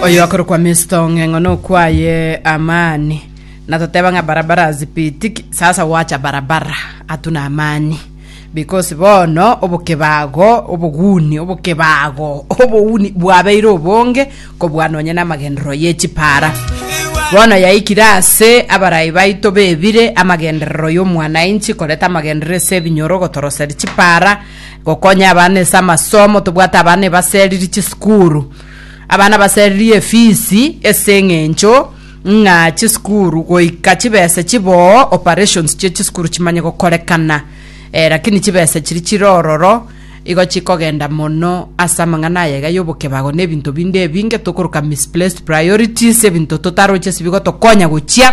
oyo akorokwa Mr. Ng'eng'o nokwaye amani natoteba ng'a barabara hazipitiki sasa wacha barabara hatuna amani because bono obokebago oboguni obokebago oboguni bwabeire obonge kobwa nonye n'amagenderero y'echipara bono yaikire ase abarai baito bebire amagenderero y'omwananchi koreta amagenderero ase ebinyoro gotoroseria chipara Gokonya abana ase amasomo, tobwate abana ebaseriri chisukuru. Abana baseriri efisi ase eng'encho ng'a chisukuru goika chibesa chiboo operations chia chisukuru chimanye gokorekana. Eh, lakini chibesa chiri chire ororo igo chikogenda mono ase amang'ana aya iga y'obokebago na ebinto binde ebinge tokoroka misplaced priorities, ebinto totaroche ase bigotokonya gochia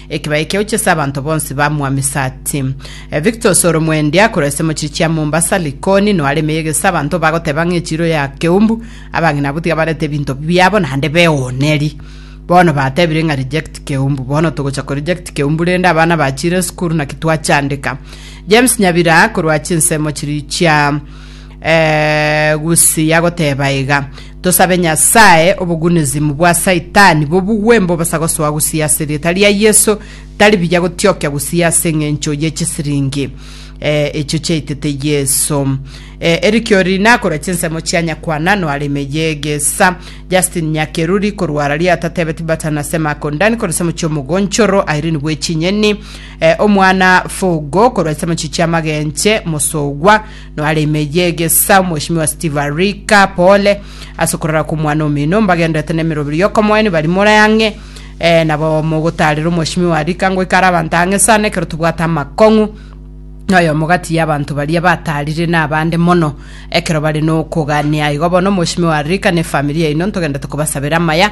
Ekibe ekio oche ase abanto bonsi ba Mwamisati. Eh, Victos ore omwendi akorwa ase mochie chia Mombasa, Likoni, noare emeyega ase abanto bagoteba ng'a echiiro ya Keumbu, abang'ina abwo tiga barete ebinto biabo naende beoneri. Bono batebire ng'a reject Keumbu. Bono togocha ko reject Keumbu rende abana bachiire esukuru naki twachandeka. James Nyabira akorwa chinsemo chiria chia eh, Gusii agoteba iga. Tosabe Nyasae obogunezimu bwa Saitani bobugwe mbobosa gosoa gusii ase erieta ria Yeso, tari biya gotiokia gusii ase eng'encho ye chisiringi eh, echio chiaitete Yeso. Eh, erikiori nakora chinsemo chia nyakwana noare ime yegesa. Justin Nyakeruri korwa Araria atatebeti bata na sema akondani kore semo chiomogonchoro Irene Bwechinyeni, eh, omwana Fogo korwa esemo chichia amagenche Mosogwa, Noaremeyie egesa Mweshimiwa Steve Arika pole ase okorara kw'omwana omino mbagenderete na emeroberi y'okomoenia bari more ang'e eh, nabo mogotarera Omweshimiwa Arika ngoika are abanto ang'e sana ekero tobwate amakong'u noyomo gati y'abanto baria batarire nabande mono ekero bare nokogania igo bono Omweshimiwa Arika ne efamiri yaino ntogenderete kobasabera amaya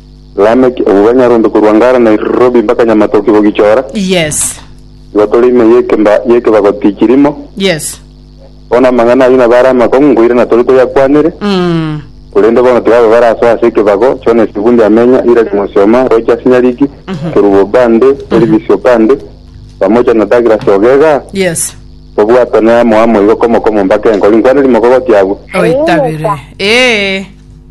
Lameki, obwo banyarombe korwa Ngara, Nairobi mpaka Nyamatoki gogichora, Yes. igo tore ime y'ekemba y'ekebago tikirimo. Yes. Bono amang'ana ayio nabo are amakong'u nkoirana na tore toyakwanere, Mm. korende bono tiga aba barasoe ase ekebago, Jones Ibundi amenya, Irari Mosioma, Rogers Nyariki, Kerubo Obande, Elvis Obande, pamoja na Douglas Ogega, Yes. tobwatane amo amo igo komo komo mpaka enkoro inkwaneri mokogotia abwo. Oitabire. Ee.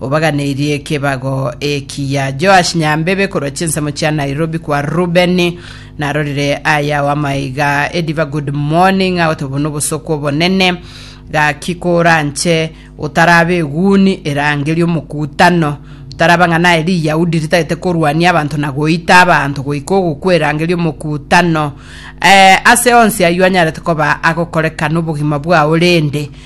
Obaganeirie ekebago ekiya. Joash Nyambebe korwa chinsemo chia Nairobi kwa Rubeni narorire aya ao amaiga ediva good morning agote obo nobosoko obonene gaki koranche otarabe eguni erangeria omokutano taraba ng'a naye riyahudi ritagete korwania abanto na goita abanto goika ogokwa erangeria omokutano eh, ase onsi aywo anyarete koba agokorekana obogima bwao rende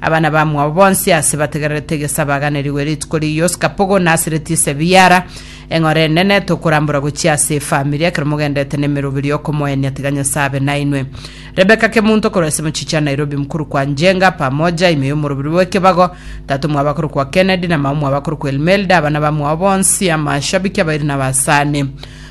Abana bamwabo bonsi aase bategererete egesa baganerigwe rituko ri'yio Skapogo na asireti ise Biara. Eng'ora enene tokorambora gochia ase efamiri ekero mogendete nemeroberi y'okomoenia tiga Nyasae abe nainwe. Rebecca Kemunto korwa ase mochichi ya Nairobi mkuru kwa Njenga, Pamoja, ime y'omoroberi bw'ekebago, Tato mwaba korwa kwa Kennedy na Mao mwaba korwa kwa Elmelda, abana bamwabo bonsi, amashabiki abairi na abasani.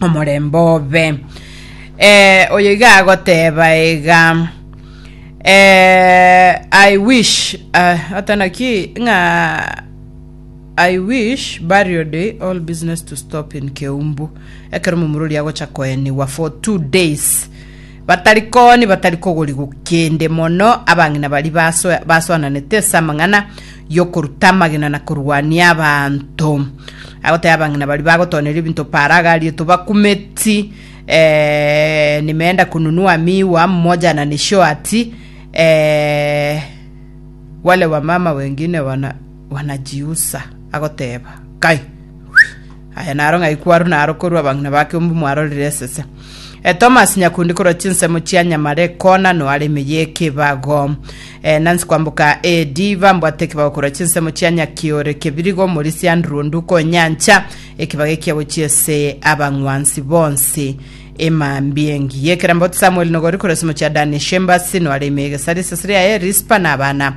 omorembe obe. Eh, oyo iga agoteba iga eh, I wish uh, atanaki ng'a I wish burial day all business to stop in Keumbu ekero momurori agocha koenigwa for two days Batari kooni batari kogorigwa kende, mono abang'ina baria basoe- basoananete ase amang'ana y'okoruta amagena na korwania abanto. Agoteba abang'ina baria bagotoneria ebinto Paaro agarietwe bakumeti, eh, nimeenda kununua miwa mmoja na nishwati, eh, wale wamama wengine wana- wanajiusa. Agoteba, Kai! Aya naro ng'ai kwarwa naro korwa abang'ina ba Kembu mwarorire esese. E, Thomas nyakundi korwa chinsemo chia Nyamare kona noare emeyi ekebago. E, Nancy kwamboka AD bambwate ekebago korwa chinsemo chia Nyakiore Kebirigo Morisi Andrew Onduko Nyancha ekebago ekia gochia ese abang'wansi bonsi emambi engi yekeramboti Samuel Nogori korwa esemo chia Dani Shembasi noare emeyi egesari eseseri yaye Rispa na abana